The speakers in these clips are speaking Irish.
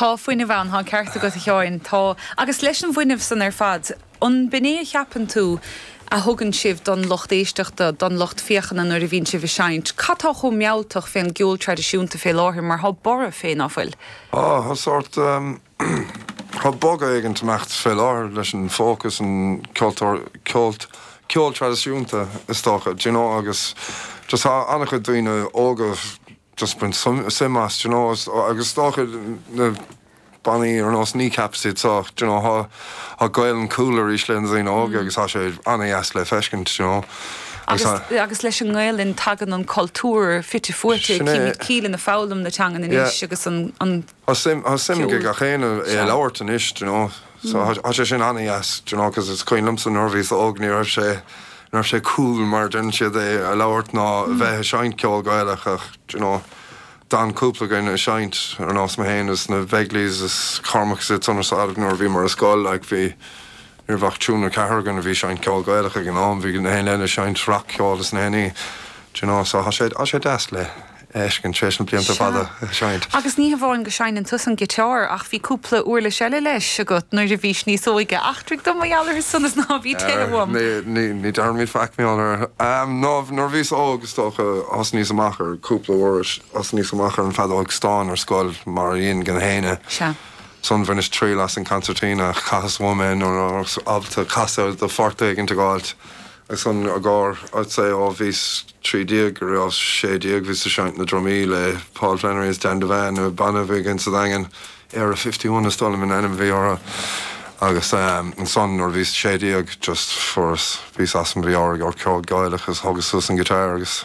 Tá fuinneamh ann, tá an ceart agat a Sheáin, tá. Agus leis an bhfuinneamh san ar fad, an b'in é a cheapann tú a thugann sibh don lucht éisteachta, don lucht féachana nuair a bhíonn sibh ag seinnt? Cad tá chomh mealltach fén gceol traidisiúnta fé láthair mar thá borradh fé, ná fuil? Ó, thá sórt, thá bogadh éigin ag imeacht fé láthair leis an folk is an ceol tr, ceol, ceol traidisiúnta is dócha, d'you know, agus just thá an-chuid daoine óga, just ag baint suim as, d'you know, agus is dócha na bannaí ar nós Kneecap is iad so, d'you know, thá Gaolainn cool arís le na daoine óga agus thá sé ana-dheas le feiscint, d'you know. Agus agus leis an nGaolainn tagann an cultúr fite fuaite, gach éinne ag foghlaim na teangan anois agus an Tá suim ag gach éinne é a labhairt anois, do you know, so tá sé sin an-deas, do you know, cos is cuimhin liomsa nuair a bhíos óg ní raibh sé, ní raibh sé cool mar a deireann siad é a labhairt ná a bheith a' seinnt ceol Gaelach ach, do you know, d'fhan cúpla againn a' seinnt, ar nós mé féin is na Bhegleys is Cormac is iad san ar fad nuair a bhíomar ar scoil, like bhí, ní raibh ach triúr nó ceathrar againn a bhí a' seinnt ceol Gaelach ag an am, bhí gach éinne eile a' seinnt rac-cheol is na héinní, do you know, so thá sé, thá sé deas le. fheiscint tar éis na blianta fada a sheinnt. Agus ní hamháin go seinneann tusa an giteár ach bhí cúpla uirlis eile leis agat nuair a bhís níos óige. Eachtraigh dom mar gheall orthu san is ná bí tirim uaim! Ní deirimid faic mionn ar. Nó nuair a bhíos óg, is dócha, thosnaíos amach ar cúpla uirlis. Thosnaíos amach ar an bhfeadóig stáin ar scoil mar dheineann gach éinne. Ansan bhaineas triail as an gcansairtín ach chaitheas uaim é nuair nárbh ábalta casadh do phort éigin a dh'fháilt. Agus an giotár, tar éis, ó bhíos trí déag go raibheas sé déag, bhíos ag seinnt na drumaí le Paul Flannery is Dan Devane, banna a bhí againn sa Daingean, Area Fifty One is dóigh liom an ainm a bhí orainn, agus ansan nuair a bhíos sé déag just fuaireas píosa as an bhfeoir ag iompar ceol Gaelach agus thógas suas an guitar agus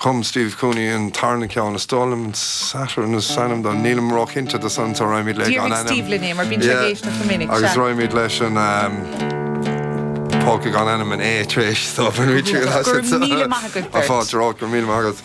Chum Steve Cooney an tarna ceann, is dóigh liom, Saturn is ainm do, nílim róchinnte de san so raghaimid le gan ainm. Dearbhóidh Steve dúinn é mar bíonn sé ag éisteacht go minic, sea. Agus raghaimid leis an Polka gan ainm in A tar éis, so bainfimid triail astu, so. Go raibh míle maith agat beirt. Fáilte romhat, go raibh míle maith agat.